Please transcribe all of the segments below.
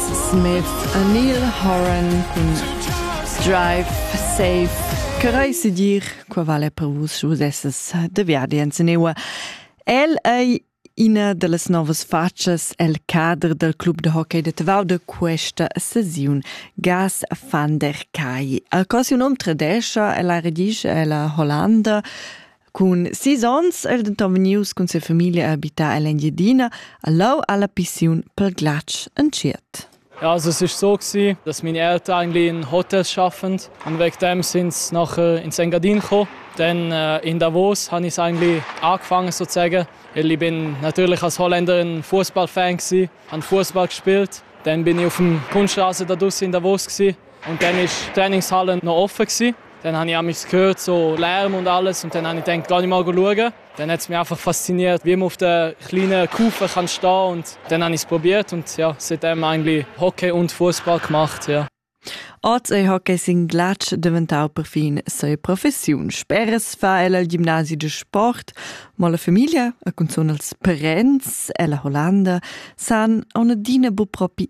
Smith a Neil Horan cun Drive Safe. Che reise dir, qua vale per vus sche vus esses de viadi en Senewa. El ei ina dallas novas facas el cadre del club de hockey de Tavau de questa sesiun, Gas van der Kai. Al così un om tradescia, ella redige, ella Hollanda, Cun sis onns è el denton vegnius cun sia famiglia a habitar ell'Engiadina, a Lau alla pissiun per glatsch entschiet. Ja, also es ist so gewesen, dass meine Eltern eigentlich in Hotels arbeiten und wegen dem sind sie nachher ins Engadin gekommen. Dann äh, in Davos habe ich eigentlich angefangen sozusagen. Ich bin natürlich als Holländer ein Fußballfan gewesen, habe Fußball gespielt. Dann bin ich auf dem Kunstrasen in Davos gewesen. Und dann ist die Trainingshalle noch offen gewesen. Dann habe ich auch mich gehört, so Lärm und alles. Und dann habe ich gedacht, gar nicht mal schauen. Dann hat es mich einfach fasziniert, wie man auf der kleinen Kufe kann stehen Und dann habe ich es probiert und ja, seitdem eigentlich Hockey und Fußball gemacht. Ja. Als Hockey sin glatsch deventau perfin se professiun. Speres fa ella il gimnasi de sport, ma la famiglia, a cunzun als parents, ella Hollanda, san on adina bu propi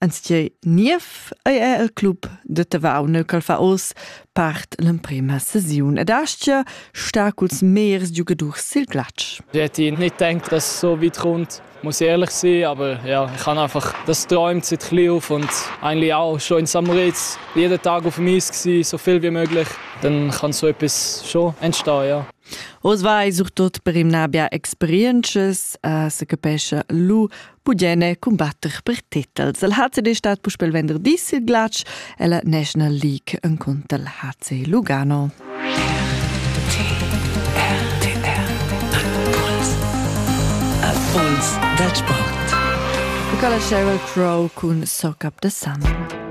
Enztgei niev ei era il club da Tavau neu ch'el fa oz part l'emprema sesiun ed aschia star culs megliers giugadurs sil glatsch. Deti nicht denkt, dass es so weit kommt, muss ich ehrlich sein, aber ja, ich habe einfach das geträumt seit klein auf und eigentlich auch schon in Samritz jeden Tag auf dem Eis gewesen, so viel wie möglich. Dann kann so etwas schon entstehen, ja. Os vai surtut per imnabia experiences, uh, se capescha lu Bugene cumbatter per titels. El HCD stat puspel venderdi sil glatsch e la National League enconter il HC Lugano. Impuls dal sport. Nicola Sheryl Crow cun Sock Up the Sun.